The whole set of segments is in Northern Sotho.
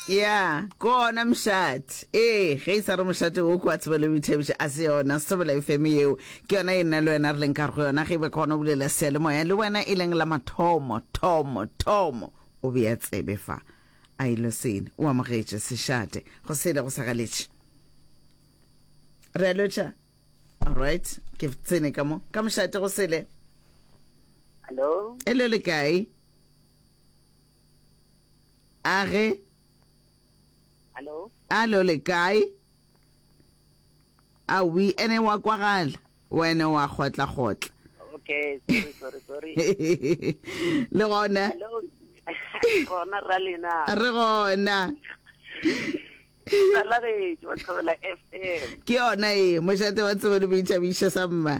Ya, ke ona mošate. Ee, ge e sa re mošate wo kwa tsebo le boithabiša, a se yona Sebolayo feme yeo. Ke yona e nna le wena re leng ka go yona, ge e be kgona o bulela seyalemoya le wena e leng la mathomo, thomo, thomo. O be a tsebe fa a e lo sene. O amogetše sešate. Go sele go sa galetše. Re a lotšha. All right. Ke tsene ka mo. Ka mošate go sele. Hello. Hello le kae? a ge Hello? alo le kae a wi ene wa kwagala wena wa kgotlakgotla Okay, sorry, sorry, sorry. le gona Hello? Gona ra lena. re gona Salagetšo, Thobela FM. ke yona e mošate wa tsebo le boitšhabišo sa mma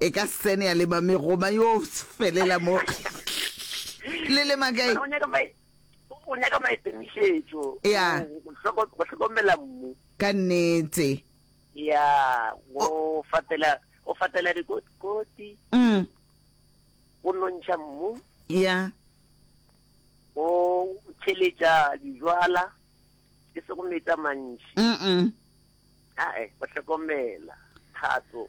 E ka sene ya leba megoma yo felela mo. Le le makai. O nyaka mai o nyaka mai temišetšo. Ya. Go hlokomela mmu. Ka nnete. Ya, go fatela go fatela dikoti. Mm. Go nontšha mmu. Ya. Go tšheletša dijwala. Ke se go metsa mantši. Mm. -mm. Ae, o hlokomela, thato,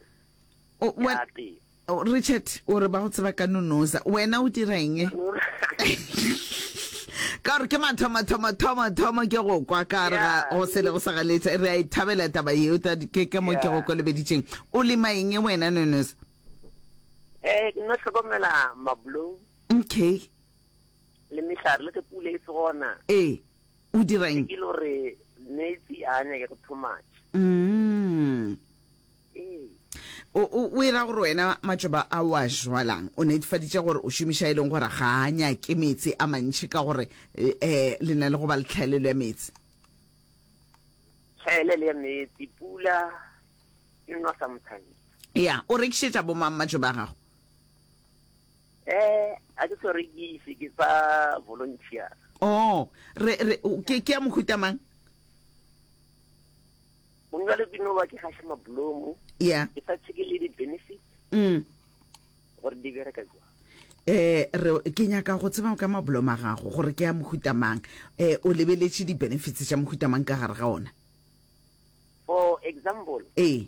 O- ya we- teng. o- richard o re ba go tseba ka nonoza wena o dira eng ka gore ke mathomathomathomathomo ke go kwa ka re ga Yeah. go sele go sa galetsa re a e thabela taba yeo ta- ke ke mo ke Yeah. go kolobeditseng o lema eng wena nonoza Eh, ke no hlokomela mablou okay le mehlare le ge pula e se gona. ee O direng? Ke lo re meetse a nyake go too much. Mm. Ee. O, o, o e ra gore wena matšoba a wa jwalang o netefaditše gore o šomiša e leng gore ga a nyake meetse a mantši ka gore eh, le na le go ba le tlhaelelo ya meetse? Tlhaelelo ya meetse, pula e nwa sometimes. Ya, o rekišetša bo mang matšoba a gago? Eh, a ke swere ke ise ke sa volunteer. Oh, re re o- ke ke ya mohuta mang? Gong jale ke no ba ke gaša mabolomo, Yeah. ke sa tsheke le di-benefit Mm. gore di bereka jwang. Eh re ke nyaka go tseba ka maboloma a gago gore ke ya mohuta mang. Eh o lebeletše di-benefits tša mohuta mang ka gare ga ona? For example, Ee.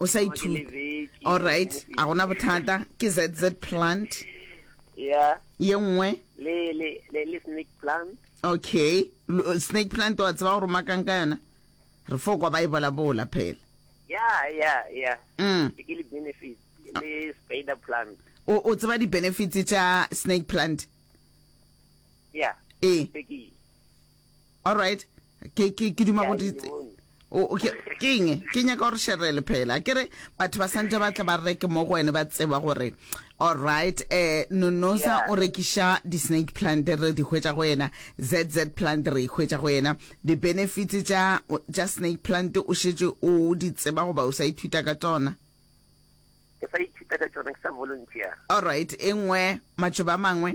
o sa ithute alright a gona bothata ke zz plant ya ye nngwe le le le le snake plant okay snake plant wa tseba gore makang ka yona re fo kwa ba e bola bola phela ya ya ya mm. ke le benefit le spider plant o o tseba di benefits tsa snake plant ya e all right ke ke ke duma go di o o- ke ke eng ke nyaka gore sherele phela ke re batho ba santse ba tla ba reke mo go wene ba tseba gore all right eh nonosa Yeah. o rekiša di-snake plant re di hwetša go yena zz plant re ikhwetša go yena di-benefits tša tša snake plant o šetše o di tseba goba o sa ithuta ka tsona ke sa ithuta ka tsona ke sa volunteer all right e nngwe matšoba a mangwe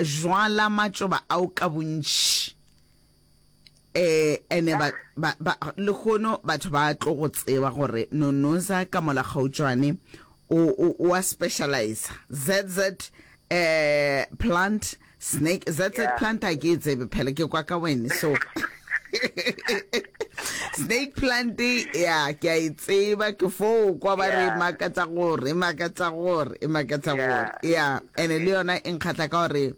Jwala matšoba ao ka bontši, and-e ba, ba, ba, lehono batho ba tlo go tseba gore Nonoza ka mola kgautšwane o, o, o a specializer. ZZ eh, plant, snake, ZZ Yeah. plant a ke e tsebe phela, ke kwa ka wene, so snake plant ya ke a e tseba ke foo kwa ba re Yeah. makatsa gore e makatsa gore e makatsa Yeah. gore ya ene le yona e nkgatlha ka gore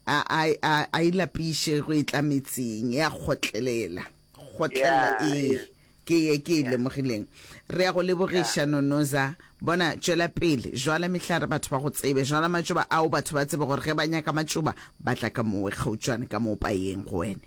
a a- a- a ilapiše go e tla metseng ya kgotlelela kgotlelela Yeah. ee ke ye ke e lemogileng re ya go lebogiša nonoza bona tšwela pele jwala mehlare batho ba go tsebe jwala matšoba ao batho ba tsebe gore ge ba nyaka matšoba ba tla ka mowe kgautšwane ka moo payeng go wene